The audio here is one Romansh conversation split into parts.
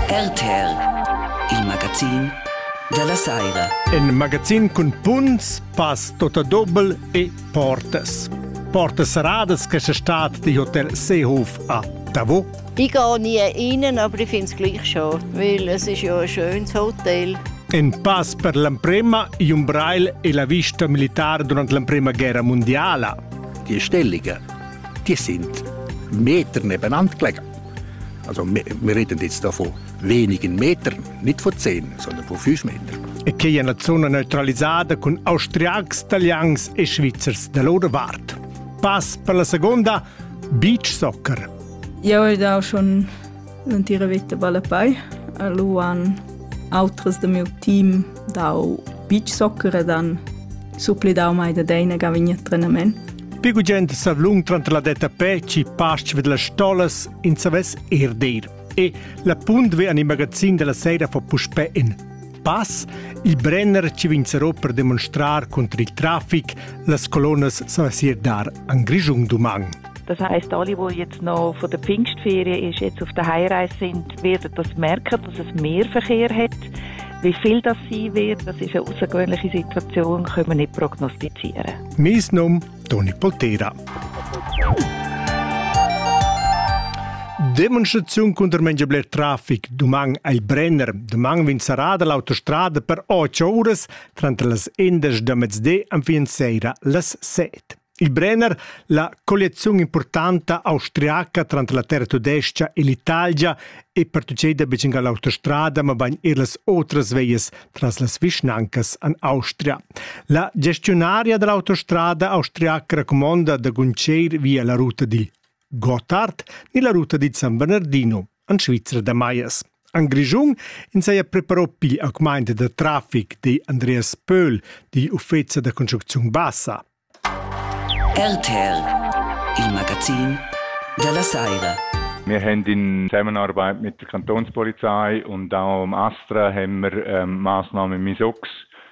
RTL, il magazin della Saira. In magazin cun punts, pass tota dobel e portas. Portas seradas che se stat di Hotel Seehof a Davo. Ich gehe nie rein, aber ich finde es gleich schon, weil es ist ja ein schönes Hotel. In pass per l'emprema Jumbrail e la vista militare durante l'emprema guerra mondiale. Die Stellungen, die sind Meter nebeneinander gelegen. Also wir reden jetzt davon wenigen Metern, nicht von 10, sondern von 5 Metern. E che è una zona neutralizzata con austriacs, italians e svizzers da loro vart. Pass per la seconda, beach soccer. Io ho da schon l'intera vita ballapei. Lu han autres del meu team dau beach soccer e dan supplidau mai da deina ga vigni a trenament. Più gugent savlung tranter la detta pe ci pasch ved las stolas in savess er dir. E la punt ve an il magazin della sera fa puspè in pass, il Brenner ci vinzerò per demonstrar contro il traffic las colonas savessier dar an Grischung dumang. Das heißt, alle, die jetzt noch von der Pfingstferien ist, jetzt auf der Heimreise sind, werden das merken, dass es mehr Verkehr hat. Wie viel das sein wird, das ist eine außergewöhnliche Situation, können wir nicht prognostizieren. Mein Name Toni Poltera. Demonstrazione contro mengia bler traffic doman ai Brenner. Doman vin sarada l'autostrada per 8 uras, tranter las 11 da mezdi, enfin sera las 7. Il Brenner, la colliaziun impurtanta austriaca tranter la terra tudestga e l'Italia è pertucceda betg a l'autostrada, mabain er las otras veias tras las vischnancas en Austria. La gestiunaria da l'autostrada austriaca racumonda da guntgir via la ruta digl Gotthard ni la ruta dit San Bernardino, en Svizra da Maias. En Grischun ins haja preparò pli augmaint da trafic, di Andreas Pöhl, di uffeza da construcziun bassa. RTL, il magazin della Saira. Wir haben in Zusammenarbeit mit der Kantonspolizei und auch am Astra haben wir ähm, Maßnahmen Misox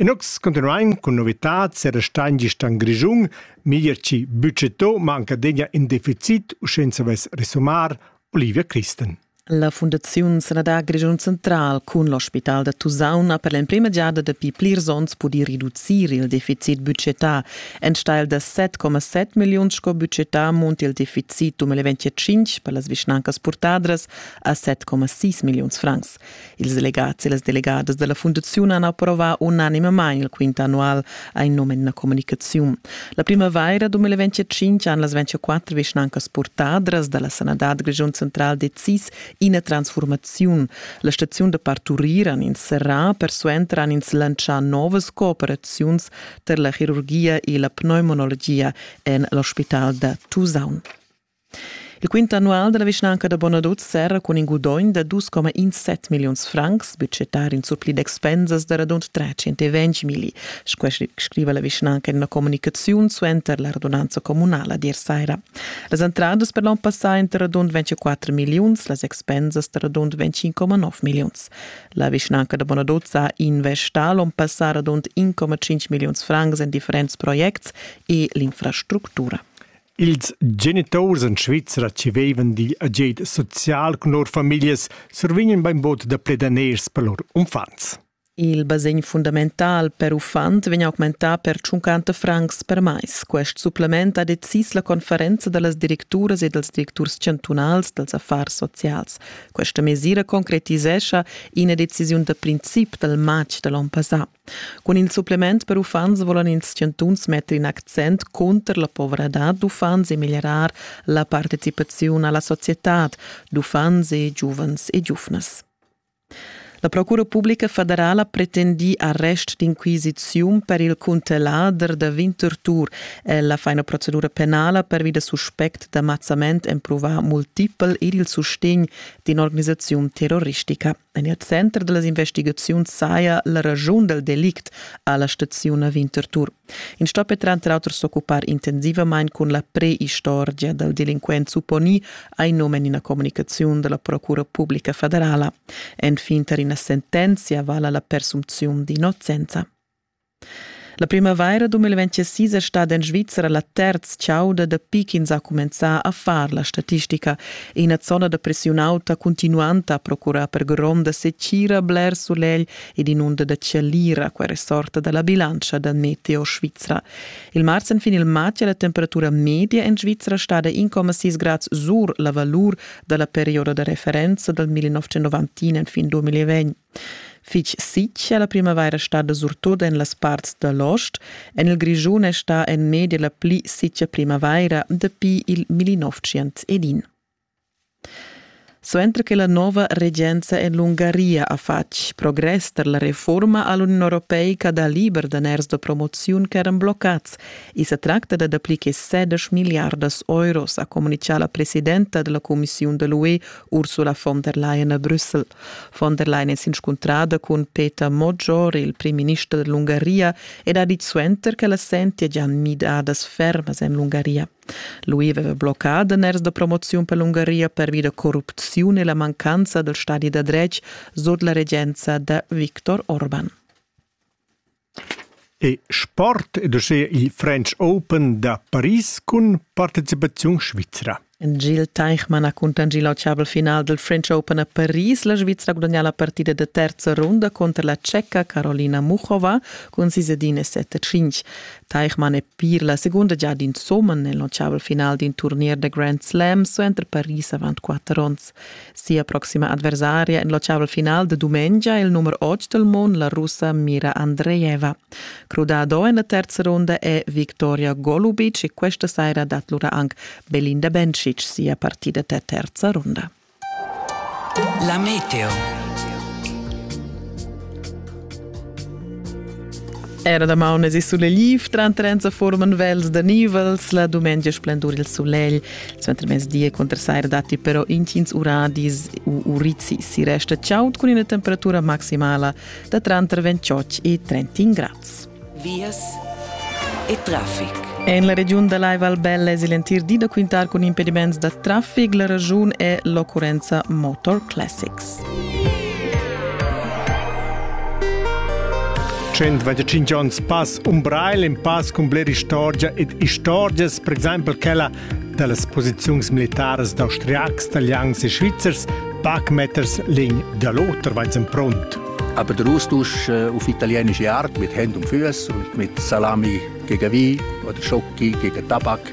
E nus cuntinuain cun novitads e restain gist en Grischun, meglier chi bütschetto manca degna in deficit u sch'ün savess resumar Olivia Christen. La Fundaziun Sanadà Grischun Central cun l'ospital da Tusaun ha per l'emprima giada dapi plirs onns pudì reducir il deficit budgetà. Enstagl da 7,7 milliun sco budgetà munta il deficit 2025 per las vischnancas purtadras a 7,6 milliuns francs. Ils delegats e las delegadas dalla fundaziun han approvà unanimamain il quint annual a in nom en la communicaziun. La primavaira 2025 han las 24 vischnancas purtadras dalla sanadad Grischun central decis ina transformaziun. La staziun da parturir han ins serrà, persuenter han ins lantschà novas cooperaziuns per la chirurgia e la pneumonologia en l'ospital da Tusaun. Il quint annual dalla vischnanca da Bonaduz serra cun in gudogn da 2,17 milliuns francs, budgetar in surpli d'expensas da radund 320 milli, scriva la vischnanca in una comunicaziun suenter la radunanza communala d'ier saira. Las entradas per l'onn passà ein da radund 24 milliuns, las expensas da radund 25,9 milliuns. La vischnanca da Bonaduz ha investà l'onn passà radund 1,5 milliuns francs en differents projects e l'infrastructura. Ils geniturs en Svizra tschevevan digl agid social cun lur famiglias survignan bainbod da plir daners per lur unfants. Il basegn fundamental per uffant vegn augmentà per 50 francs per mais. Quest supplement ha decis la conferenza da las directuras e dals directurs chantunals dals affars socials. Questa mesira concretisescha ina decisiun da princip dal matg da l'onn passà. Cun il supplement per uffants volan ils chantuns metter in accent cunter la povradad d'uffants e miglierar la participaziun alla societad d'uffants e giuvens e giuvnas. La Procura Publica Federala pretendì arrest d'inquisiziun per il cuntellader da Winterthur e la faina procedura penala pervi da suspect d'amazzament emprovà multipel ed il sustegn d'in'organisaziun terroristica. En il center da las investigaziuns saja la raschun dal delict a la staziun a Winterthur. In sto per tranter auter s'occupar intensivamain cun la preistorgia dal delinquent supponì hai num en ina communicaziun da la Procura Publica federala. Enfin tar ina sentenzia vala la persumziun d'innocenza. La primavaira 2026 è stada en Svizra la terz chauda dapi ch'ins ha cumenzà a far la statistica. Ina zona da pressiun auta cuntinuanta ha procurà per gronda setgira bler sulegl ed inunda da chalira, quai resorta da la bilantscha da Meteo Svizra. Il mars en fin il matg è la temperatura media en Svizra stada 1,6 grad sur la valur da la perioda da referenza dal 1990 en fin 2020. Fich sitg è la primavaira stada surtut en las parts da l'ost. En il Grischun è stà en media la pli sitga primavaira dapi il 1911. Suenter che la nova regenza en l'Ungaria ha fatg progress tar la reforma a l'Uniun Europeica da liber daners da promoziun ch'eran bloccads, i sa tracta da dapli che 16 miliardas euros, ha communitgà la presidenta da la cumissiun da l'UE Ursula von der Leyen a Brüssel. Von der Leyen è s'inscuntrada cun Peter Moggior, il primminister dell'Ungaria, ed ha dit suenter che la sentia già midadas fermas en l'Ungaria. Lui aveva bloccà daners da promoziun per l'Ungaria pervi da corrupziun e la mancanza dal stadi da dretg sut la regenza da Viktor Orban. è sport ed uschia il French Open da Paris cun participaziun svizra. En Gil Teichmann ha cuntanschì l'autschavel final dal French Open a Paris. La Svizra ha gudagnà la partida da terza runda cunter la Tscheca Carolina Muchova cun sis ed in e set e tschintg. Teichmann è pir la segunda giada insumma en l'autschavel final d'in turnier da Grand Slam suenter Paris avant quatter onns. Sia proxima adversaria en l'oceavel final de dumengia il numero 8 del mond, la russa Mira Andreeva. Crudado en la terza ronda è Victoria Golubic e questa sera dat lura anche Belinda Bencic sia partita der terza ronda. La Meteo. Era da maunes e sulegl, trant trenza forman vels da nivels, la dumengia splendur il sulegl suenter mezdi e contrasair datti però intgins uradis u urizi si resta chaud cun ina temperatura maximala da tranter 28 e 31 grads. Vias e traffic. En la regiun da Live Albella es il entir di da quintar cun impediments da traffic. La ragiun è l'occurrenza Motor Classics. 125 onns pass Umbrail in pass cun bler istorgia ed istorgias, per exempel quella dallas posiziuns militaras d'austriacs, talians e svizzers, Backmatters Ling da l'oter, vai en pront. Aber der Austausch äh, auf italienische Art mit Händen und Füßen und mit Salami gegen Wein oder Schocke gegen Tabak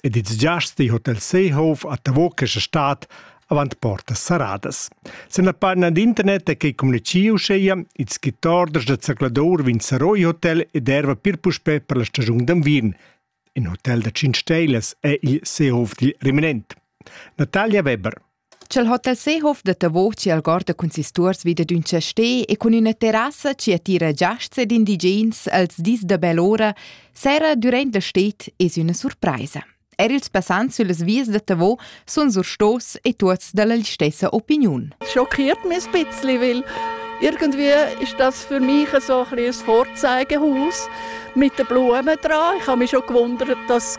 ed ils giasts dil hotel Seehof a Tavo questa stad avant portas saradas. Sen la pagina d'internet è quei communichiu uscheia ils skittorders da zercladur vin Saroi Hotel ed erva pir puspe per la stagiun d'anvien. In hotel da 5 stelas è il Seehof dil Reminent. Natalia Weber. Ch'el ho tal sehof da Tavoc chi algorda cun sis tuors vi da ün chastè e cun üna terrassa chi attira giasts ed indigens els dis da bell'ora, sera dürant la sted es üna surpraisa. Er ils passants süllas vias da Tavo sun surstos e tuots dalla stessa opiniun. Schockiert mich ein bisschen, weil irgendwie ist das für mich so ein, ein Vorzeigehaus mit den Blumen dran. Ich habe mich schon gewundert, dass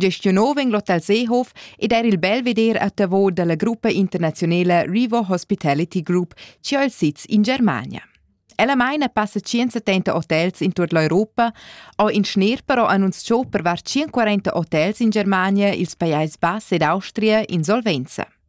Gestio nov vegn l'hotel Seehof ed er il bel veder a Tavo dalla gruppa internaziunala Rivo Hospitality Group, ci ho il sitz in Germania. Ella meina passa 170 hotels in tut l'Europa, o in schner però annunzchò per var 140 hotels in Germania, ils Pajais Bass ed Austria in solvenza.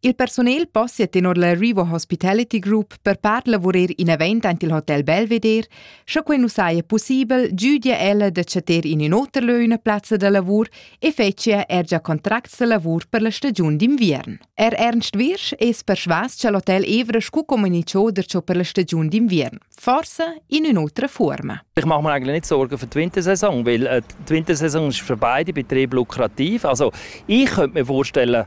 Il personal possia tenor la Rivo Hospitality Group per part lavurer in event ant il Hotel Belvedere, sche quei nu saja pussibel giudia ella da chatter in in oter lö üna plazza da lavur e fetschia er già contracts da lavur per la stagiun d'inviern. Er Ernst Wirsch es persvas cha l'hotel Evra scu comunicò der ciò per la stagiun d'inviern, forse in un'otra forma. Ich mache mir eigentlich nicht Sorgen für die Wintersaison, weil äh, die Wintersaison ist für beide Betriebe lukrativ. Also ich könnte mir vorstellen,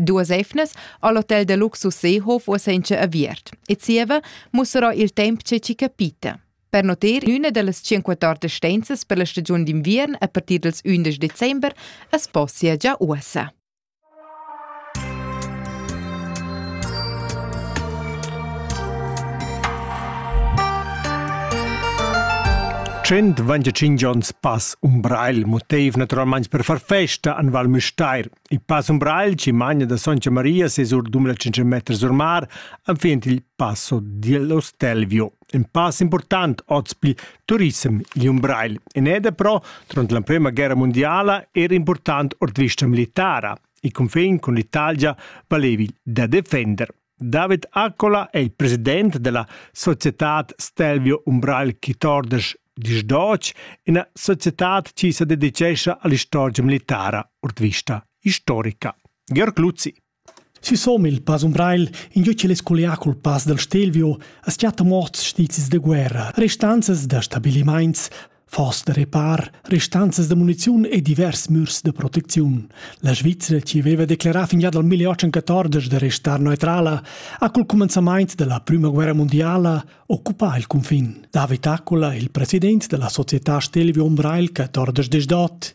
Duas eivnas ha l'hotel da luxus Seehof ussa incha aviert e zieva mussarà il temp che chi capita. Per noter, üna da las 54 stenzas per la stagiun d'inviern a partir dals 11 december as possia già uossa. Tschient 25 ons pass Umbrail motiv naturalmeins per far festa an Val Müstair. Il pass umbragl chi magna da Soncia Maria ses or d'um la 500 meters or mar enfin il passo dello Stelvio. Un pass important oz pil turissem gli umbragl. En eda però, durant l'emprema guerra mondiala, era important ord vista militara. Il confin con l'Italia valevi da defender. David Accola è il president della societad Stelvio Umbrail chi tordesch disch doc, ina societad chi se dedicescha all'istorgia militara ord vista historica. Georg Luzzi. Si som il pass Umbrail, in gio ch'el es collià col pass dal Stelvio, as chatta morts stizis de guerra, restanzas da stabilimaints, Foss da repar restanzas da muniziun e divers mürs da protecziun. La Svizra, che aveva declerà fin già dal 1814 da restar neutrala, ha col cumenzament della Prima Guerra Mondiala occupà il cunfin. David Accola, il president della Società Stelvio Umbrail 14 Desdot,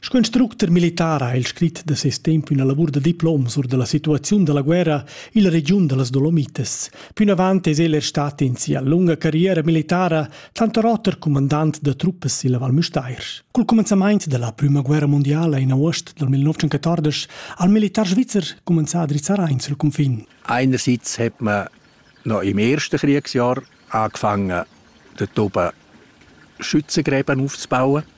Sco instructer militar ha el scrit da ses temp üna lavur da diplom sur da la situaziun da la guerra illa regiun da las Dolomites. Pünavant es el er stat in sia lunga carriera militara tanter oter cumandant da truppas illa Val Müstair. Cul cumenzamaint da la prüma guerra mundiala in aost dal 1914 ha il militar svizzer cumenzà a drizzar aint sul cunfin. Einerseits hat man noch im ersten Kriegsjahr angefangen, den oben Schützengräben aufzubauen.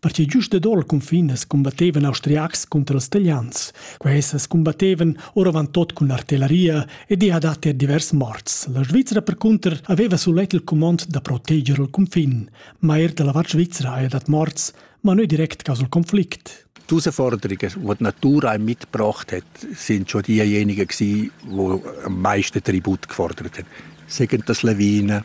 Perche giust dad ora cunfin as combattevan austriacs cunter els talians. Quai as combattevan oravant tot cun artillaria e di ha dat er divers morts. La Svizzera percunter aveva sulet il comand da proteger il cunfin, ma er da la vart svizzera haja dat morts, ma nu direct caso il conflict. Die Herausforderungen, die die Natur einem mitgebracht hat, sind schon diejenigen gewesen, die am meisten Tribut gefordert haben. Sagen das Lawinen,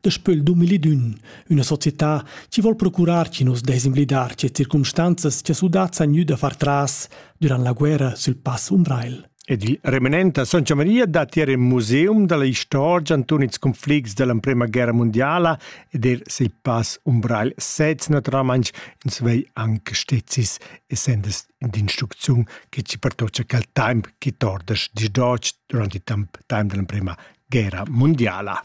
daspö il 2001, üna società chi vol procurar chi nu's dess invidar che circumstanzas cha sudats han gnü da far tras durant la guerra sül pass Umbrail. Ed il remanenta Santa Maria dat er in museum dalla istorgia anton ils conflicts dell'emprema guerra mondiala ed er sil pass Umbrail sez naturalmain ins vei anche stezis essendes d'instrucziun che ci pertocca quel temp che tordas di durant il temp time dell'emprema guerra mundiala.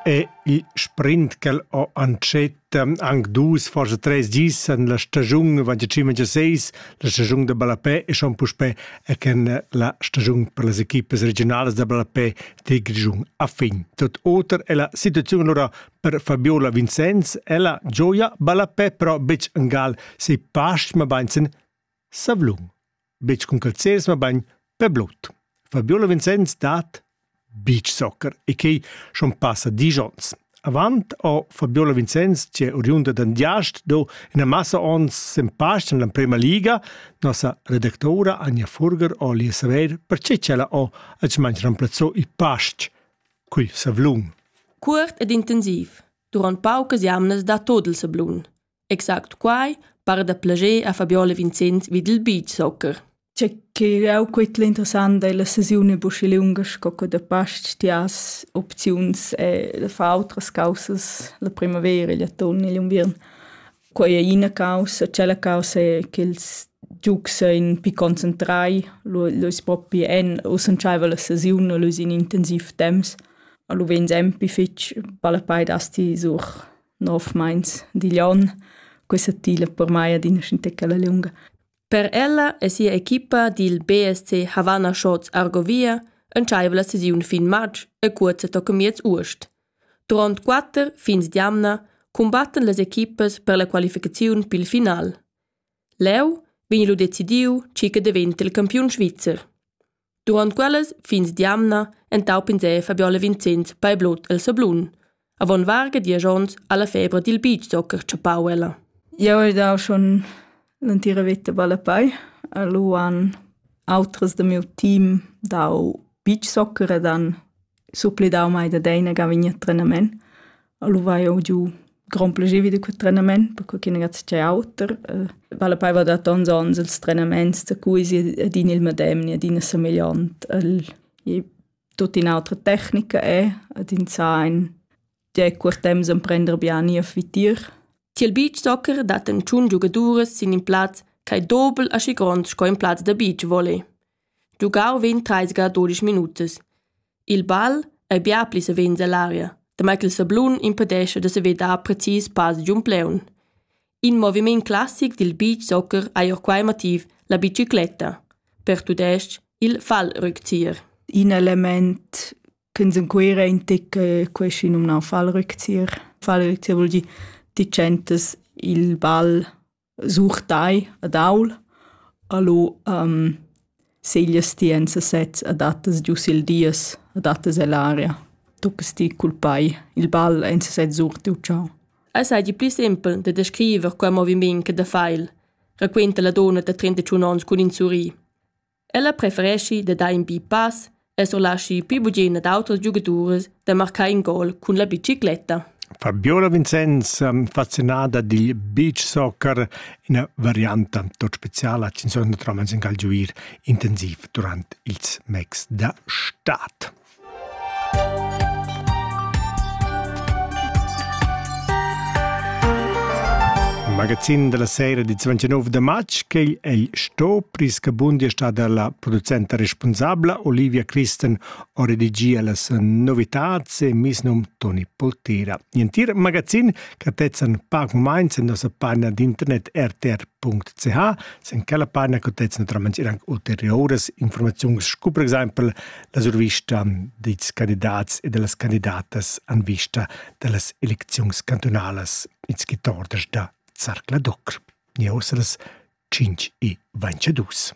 E il sprint ch'el ho antschet anc dus, forse tres dis en la stagiun 25-26, la stagiun da Ballapè e schon puspè e ken la stagiun per las equipes regionalas da Ballapè de Grischun a fin. Tot oter è la situazione allora Per Fabiola Vincenz ella gioia ballapè però betg engal se pastg ma bain sen savlun. Betg cun calzels ma bain per blut. Fabiola Vincenz dat beach soccer e quei schon passa digions. Avant ho Fabiola Vincenz, che oriunda d'Andiast, do ina massa ons sem past en l'emprema liga, nossa redactora Anja Furger ho li saver perché ch'ella ho accimaint remplazzò i past. Cui savlun. Cuort ed intensiv. Durant paucas jamnas da tot il sablun. Exact quai para da plager a Fabiola Vincent vid il beach soccer. C'è che jau quit l'interessant è la sesione buschi lunga sco che da past ti has opziuns e da far outras causas la primavera e l'atun e l'unviern. Quei ei ina caussa, tschella caussa è ch'ils giugs ein pi concentrai, lu, lu is propi en usanscheiva la sesiun, lu is in intensiv temps, lu vegn sempi fetg palapei dasti sur nov meins digl onn. Questa tila per mei adina scintecala liunga. Per ella e sia equipa dil BSC Havana Shots Argovia entscheiva la sesiun fin matg e cuorza toca miez uost. Duront quatter fins d'jamna cumbattan las equipas per la qualificaziun pil final. Leu vegn lu decidiu tgi che daventa il campiun svizzer. Duront quellas fins d'jamna entaup'ins Fabiola Vincenz bei Blut el Sablun, avon varga diesch onns alla febra dil beachsoccer tschappau ella. Jeu hai dau schon l'entira veta ballapai. Lu han autras da miu team dau beachsoccer ed han supplidau mai da deina ga vegnir a trenament. Lu vai jeu giu grond plascher vi da quei trenament, perque ch'in ragaz è auter. Vale poi va da tons onns ils trenaments, da cui si adin il medem ni adina semegliant. El è tutta un'altra tecnica è, ad in zain, è quel temps emprender bien ir vitir. Tiel beachsoccer dat en tschun giugaduras sin in plaz ch'ei dobel aschi grond sco in plaz da beach volley. Giugau vegn treisga dudisch minutas. Il bal ei bia pli savens ell'aria, damai ch'il sablun impedescha da saver dar precis pass giun plaun. In moviment classic dil beach soccer ei ord quei motiv la bicicletta, per tudestg il Fallrückzieher. In element ch'ins en Cuira intic queschi numnau Fallrückzieher. Fallrückzieher vul dir ti tschentas il bal Sur tai ed aul, a lu seglias ti enza sez, adattas giu sil dies, adattas ell'aria, tuccas ti cul pei il ball enza sez sur tiu tgau. Ei seigi pli simpel da descriver quei moviment che da feil, raquenta la donna da trentatschun onns cun in surrir. Ella prefereschi da dar in bi pass e surlaschi pli bugen ad auters giugadurs da marcar in gol cun la bicicletta. Fabiola Vincenz, ehm, fascinada dil beach soccer, ina varianta tot speciala che insomma trova in cal giuir intensiv durant ils mecs da stad. magazin della sera di 29 de matg che el sto prisca bundi sta dalla producenta responsabla Olivia Christen o redigia las novitats e misnum Toni Poltera. Nientir magazin catezzan pac mainz en nossa panna d'internet rtr.ch sen quella panna catezzan naturalmente anche ulteriores informazioni, scu per esempio La survista dils candidats e dallas candidatas en vista dallas elecziuns cantunalas ins gitordas da Zarcla Docr. Ni ossa las 5 e 22.